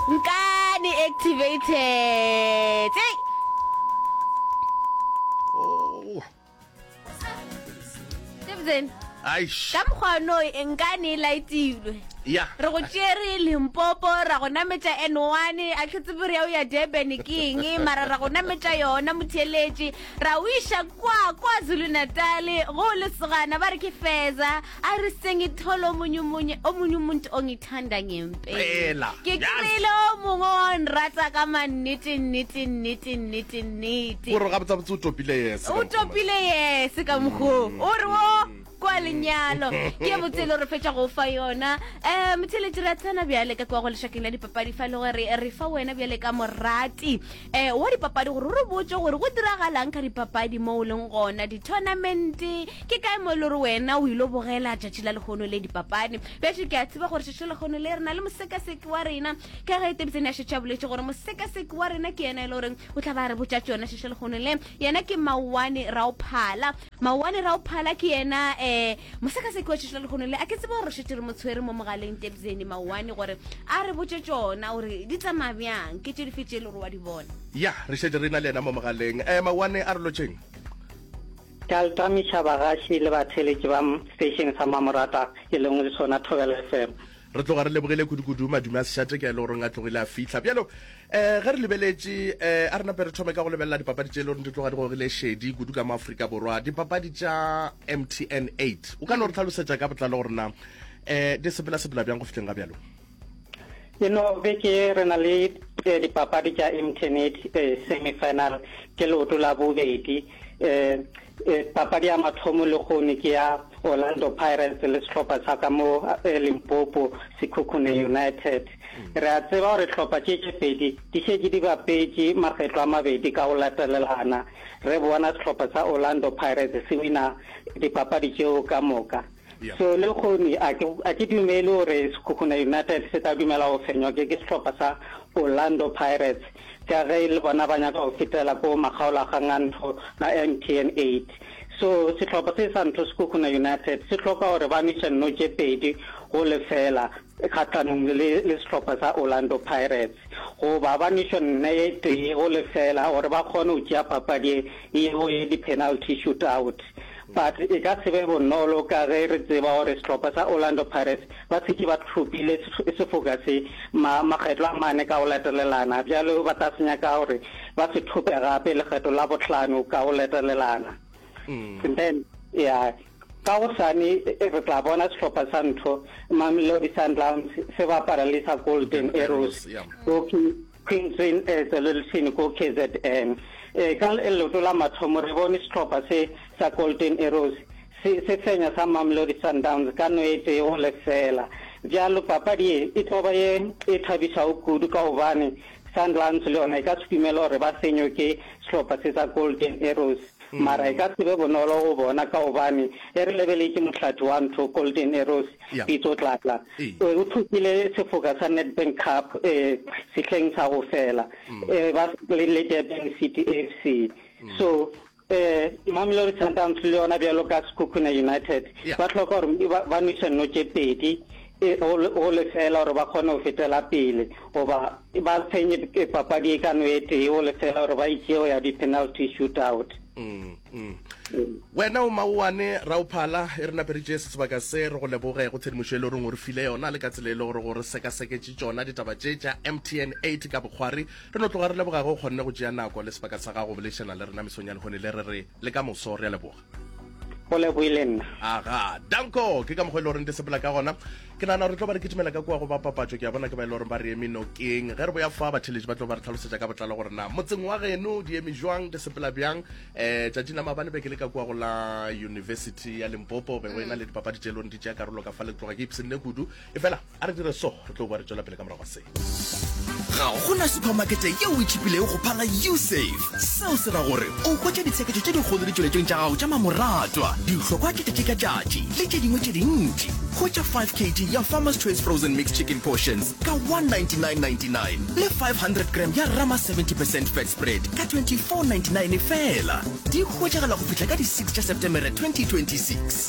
Nkani activated. Hey! Stephen, Aish. ka mokgwa o noe e nka ne e laetilwe. Ya. Re go tšere Limpopo, ra go nametša N1, a tlhe tsebe re ya o ya Durban ke eng, mara ra go nametša yona motheeletši, ra o iša kwa, kwa Zulu Natal, go o lesogana, ba re ke Feza, a re sengithole o monyumonye, o monyumunt o ngithandanye. pela ke kry-ile o mongwe wa nrata ka mannete nnete nnete nnete nnete gore ga botsabotse o topile yes o topile yes ka mokgoo mm. o re o kwa lenyalo ke botse le re fetsa go fa yona um motheletši re a tsena bjale ka kwa go lešakeng la dipapadi fa e le gore re fa wena bjale ka morati e, wa dipapadi gore o re botse gore go diragalang ka dipapadi mo o leng gona di-tournamente ke kae mo e le gore wena o ile bogela tšatši la lekgono le dipapadi bjatše ke a tseba gore tšatši lekgono le re na le mosekaseki wa rena ka ge e tebitsene ya šetša boletse gore mosekaseki wa rena ke yena e le goreng o tla ba re botša tsone tšatši lekgono le yena ke mawane raophala Maoane ra o phala ke yena eh mosakase ke wetšetšela lekgono le a ke tsebe gore šetše re mo tshwere mo mogaleng tebzeni maoane gore a re botše tšona gore di tsamaya bjang ke tše dife tše e le gore wa di bona Ya re šetše re na le yena mo mogaleng eh maoane a re lotšheng. Ka ltamiša bagaši le batheeletši ba m station sa Mamorata e lengwe le sona Thobela FM. Re tloga re lebogile kudu-kudu madume a Seshateka e le goreng a tlogile a fihla. Bjalo, eh, ge re lebeletše, eh, a re nape re thome ka go lebelela dipapadi tše e le goreng di tloga di gogile šedi kudu ka mo Afrika Borwa, dipapadi tša MTN 8. O ka no re tlhalosetša ka botlalo gore na, eh, di sepela-sepela bjang go fihleng ga bjalo? Eno beke ye re na le eh, dipapadi tša MTN 8 eh, semi-final, ke leoto la bobedi. um papadi ya mathomo le kgone ke ya orlando pirates le sehlopha sa ka mo eh, limpopo sekhukhune united mm. re a tseba gore tlhopha tše tše pedi di šetse di bapetše makgetlo a mabedi ka go latelelana re bona sehlopha sa orlando pirates se wina dipapadi tšeo ka moka So lehono a ke, a ke dumele gore Sekhukhune United se tla dumela go fenywa ke, ke sehlopha sa Orlando Pirates ka ge e le bona ba nyaka go fetela ko makgaolakgangantho a MTN 8. So sehlopha se sa ntho Sekhukhune United se hloka gore ba nweše nno tše pedi go lefela kgahlanong le, le, le sehlopha sa Orlando Pirates. Goba ba nwešwe nne ye tee go lefela gore ba kgone go tšea papadi ye, yeo ye di-penalty shootout. But e ka se be bonolo ka ge re tseba gore sehlopha sa Orlando Pirates ba šetše ba thopile sefoka se makgetlo a mane ka go latelelana, bjale ba tla se nyaka gore ba se thope gape lekgetlo la bohlano ka go latelelana. Then, ya, ka gosane re tla bona sehlopha sa ntho Mamelodi Sundowns se bapala le sa Golden Arrows. Queen Jane e tswelelšini ko kzn. E ka leoto la mathomo re bone sehlopha se sa Golden Arrows se se fenya sa Mamelodi Sundowns ka no e tee go lefela. Bjalo papadi ye e tlo ba ye e thabišago kudu ka gobane Sundowns le yona e ka se dumele gore ba fenywe ke sehlopha se sa Golden Arrows. Mara e ka se be bonolo go bona ka gobane e re lebeletše mohlathi wa ntho, Golden Arrows, Pitso Tlatla. E o thopile sefoka sa Nedbank Cup sehleng sa go fela e ba le Durban City FC. So Mamelodi Sundowns le yona bjalo ka Sekhukhune United ba hloka gore ba nwese nno tše pedi. e go lefeela gore ba kgone go fetela pele goba ba tshwenye papadi e ka no e tee go lefeela gore ba itšee go ya di-penalty shootout mm, mm. wena o maowane raophala e re naperitše se sebaka se re go leboge go tshedimošo e le goreng o re file yona le ka tsela e le gore gore sekaseketše tšona ditaba tše tša mtn 8 ka bokgwari re no tloga re leboga ge o kgonne go tšea nako le sebaka sa gago bolešana le rena mesong ya lehone le re re le ka moso re a leboga o leboe le nna aga danko ke ka mokgwa e le goreng di sepela ka gona ke nana re tlo ba re kitimela ka kua go ba papatšo ke a bona ke ba e le goreng ba re eme nokeng ge re boya fa batheletši ba tlo ba re tlhalosetša ka botlalo gore na motseng wa geno di eme jwang di sepela bjang um tšatšing la mabane be ke le ka kua go la university ya limpopo be go ena le dipapadi tše e le goreng di tšea karolo ka fa le tloga ke ipsene kudu efela a re dire so re tlo boa re tswela pele ka morago ga se ga gona supermarkete yeo e tšhipilego go phala usafe seo se ra gore o hwetša ditsheketo tše dikgolo ditšweletšong tša gago tša mamoratwa dihlokwa ke tšatši ka tšatši le tše dingwe tše dintši hwetša 5 kg ya farmers choice frozen mix chicken portions ka 19999 le 500 gram ya rama 70 percent fat spread ka 2499 fela di hwetšagala go fihla ka di-6 tša septemere 2026